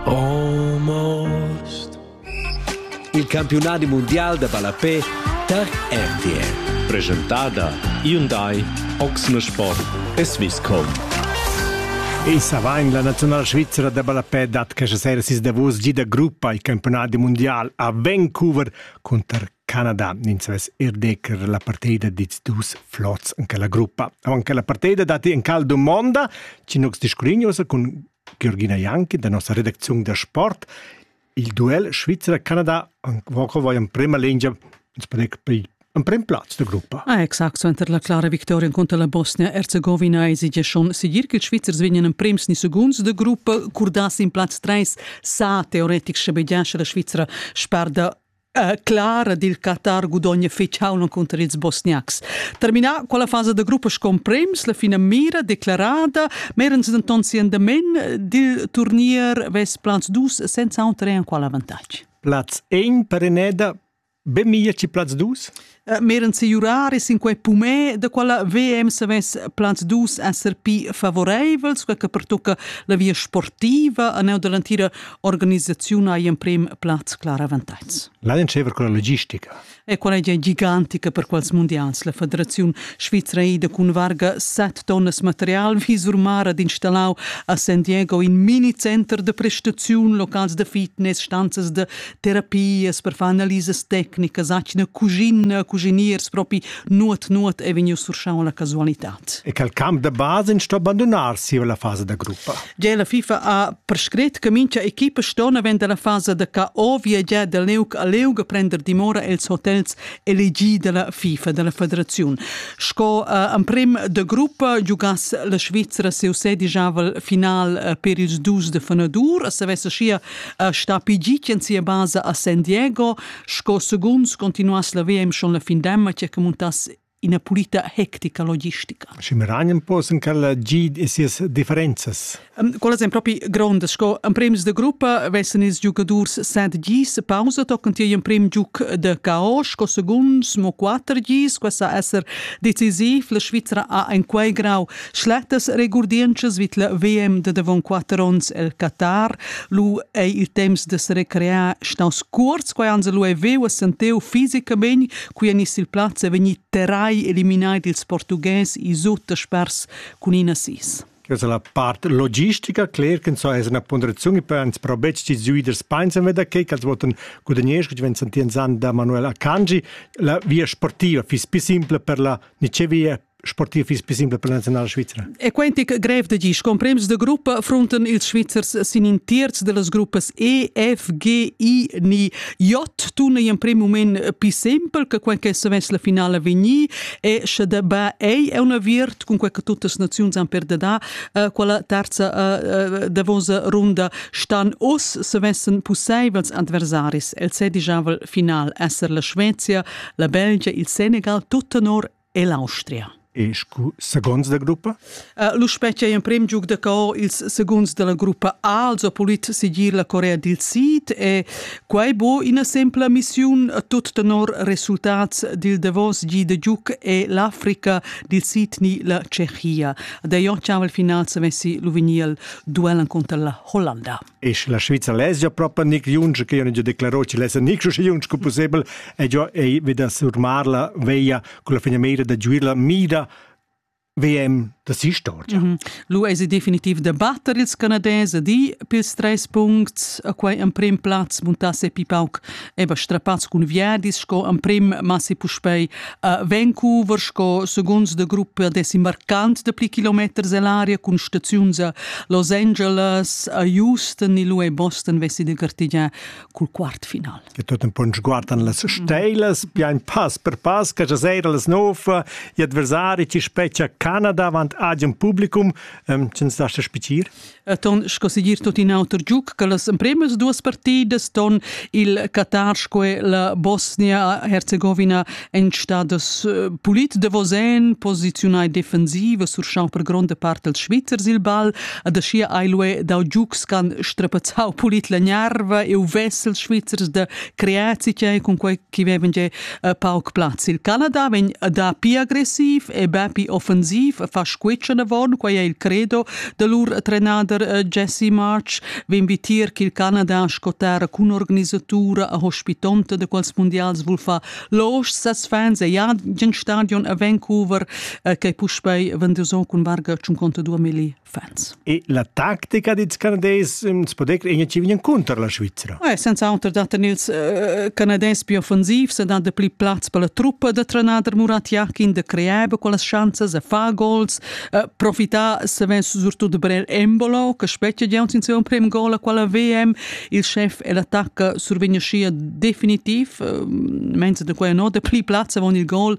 Almost. Il campiunadi mondial da ballapè tar RTL. Presentada Hyundai Oxne Sport e Swisscom. E savain la nazionala svizra da ballapè dat questa sera sis davos gi da gruppa il campionat mundial a Vancouver cunter Canada ins vess er decker la partida dits dus flots en quella gruppa. Avant che la partida datti en cal domonda, Cinox discurignosa cun Georgina Janki da nossa redacziun da sport, il duel Svizzera-Canada va en prima linea emprim plaz da gruppa. Ah, exact, suenter la clara victoria contro la Bosnia-Herzegovina esige schon sigir che i Svizzers vegnan en prims ni segunds de gruppa, curdassi in plaz 3 sa teoretic schabegiasce la Svizzera sperda Uh, Clara dil Qatar gudogna fetg hauna cunter ils Bosniacs. Terminà quella fasa da gruppa con prems, la fina mira declarada, merens denton si endamen dil turnier vess plaz dus senza auter en qual avantatg. Platz 1 per Eneda, be mia ci plaz dus? Meran siurar sin quei pumè da quella VM savess plans dus esser pi favoreivels, quei che pertucca la via sportiva a neu dall'entira organisaziun hai emprem plaz clar avantatgs. L'ha entscheiver con la logistica. E quella è gigantica per quals mondials. La Federaziun Svizra ida cun varga 7 tonnas material visurmara d'installau a San Diego in mini center de prestaziun, locals de fitness, stanzas de terapias per far analisas tecnicas, atgna cuschina, cuschiniers propi nuot nuot è vegniu surschau la casualitad. E quel camp da base in sto abandonar si la fase da gruppa. Gia la FIFA ha prescret che mincha equipa sto avend la fase da ca ovia gia da leuc a leuga prender dimora els hotels elegi dalla FIFA, dalla federaziun. Sco uh, emprim de gruppa giugass la Svizzera seu sedijaval final uh, per ils dus de Fenadur, a savesse schia Er stappi git en sia basa a San Diego, sco segunds continuass la VM schon la findemma che montass ina pulita hectica logistica. Și Miranien posen că la gid e sias differențas. Quelles ein propi grondas, sco en prems de gruppa vessen ils giocadors set gis pausa tochen tier in prim giuc de KO, sco segunds mo quatter gis, questa esser decisiv, la Svizzera ha en quei grau Schlettas regurdientschas vid la VM da davon quatter onns el Qatar. Lu ei il temps da se recrear staus cuorts, quei ans lu ei veu a senteu fisicamein, qui en il plaz e vegni terrai eliminai dils portughes i suttospers cun in assist. Questa la part logistica, cler che so es una ponderazione per ans pro bec di giui der Speinsen veda che als voten gudagnesc wenn santi en san da Manuel Akanji la via sportiva fis pi simple per la Nicevia sportiv fiss pli simpel per la nazionala svizra. E quenti grev da gi scomprems de gruppa frunten ils Svizzers sin in terz de las gruppas E, F, G, I ni J tuna in prem moment più simpel che quel che savess la finale vegni e sche de ba ei è una virt con quel che tutte le nazioni han per da uh, quella terza uh, davonsa runda stan os savessen possibels adversaris el se digiavel final esser la Svezia, la Belgia, il Senegal, tutto nor e l'Austria. E scu segunds da gruppa? Uh, L'uspetg è in prim giug da co ils segunds della gruppa A, also polit sigir la Corea dil Sid e quai bo ina sempla missiun tut tenor resultats dil Davos gi de giug e l'Africa dil Sid ni la Tschechia. Da io ciaval final se vessi Luviniel duellen contra la Hollanda. e la Svizzera lezia propa nic junge che io declaro che lessa nic schi junge co possibel e io ei veda surmar la veia con la finimeira da giuir la mira VM da sistoria. Mm -hmm. Lu ei se definitiv debatter ils Canadese di pils treis punts a quei emprim plaz muntasse pi pauc eba strapats cun viadis sco emprim massi puspei a Vancouver sco segunds de gruppa desimbarcant de pli kilometers ell'aria cun staziuns a Los Angeles, a Houston e lu e Boston vessi de gartigiar cul quartfinal. E tot un punsch guardan las steilas, bien pass per pass, che sera las nova, gli adversari ti specchia Canada avant ad un publicum, ähm, sind das das Spizier? ton sco segir tot in auter giuc che las empremas duas partidas ton il Qatar sco la Bosnia-Herzegovina en stadas eh, pulit devosen posiziunai defensiva surschau per gronda part els Svizzers il ball ad aschia ailue dau giucs can strapazzau pulit la nerva e u vessel Svizzers da creazica cun quei chi vevan già eh, pauc plaz. Il Canada vegn dapi agressiv e dapi offensiv fa squitschen avon, quai è il credo del lur trenader eh, Jesse March, vegn vitir che il Canada scotar cun organisatura hospitonta de quals mondials vul fa los ses fans e ja gen stadion a Vancouver eh, che puspei venduson cun varga 52 mili. fans. E la tactica dils canadés ins po decler che vegn cunter la Svizra. Ouais, senza auter dat ils uh, canadés più offensivs e dan de pli plaz per la truppa de trenader Murat Yakin de creare quelle chances e fa goals, uh, profittar savens surtut per Embolo che specchia già in suo primo gol a quella VM, il chef e l'attacca survegna scia definitiv, uh, mentre de quella no de pli plaz avon il gol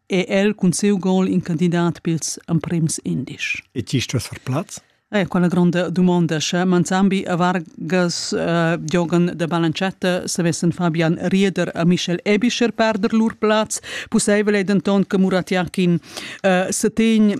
è el cun siu gol in candidat pils emprems indisch. E ti stas far plaz? Eh, quella gronda domanda. Sche Manzambi e Vargas uh, giogan de balancetta, savessen Fabian Rieder a Michel Ebischer perder lur plaz. Pusseivel è denton che Muratiakin uh, setegn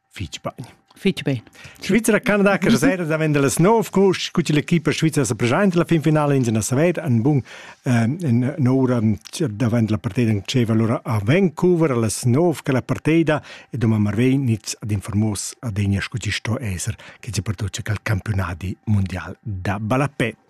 Fitg bain. Fitg bain. Svizra, Canada, che sera da vender las nov coach, cu l'equipa svizra sa presenta la finfinale in na saver, en bun en ora davant la partida c'è allora a Vancouver las nov che la partida e domani Marvei niz ad informos ad egna scuti sto esser che c'è per tutti il campionati mondial da balapè.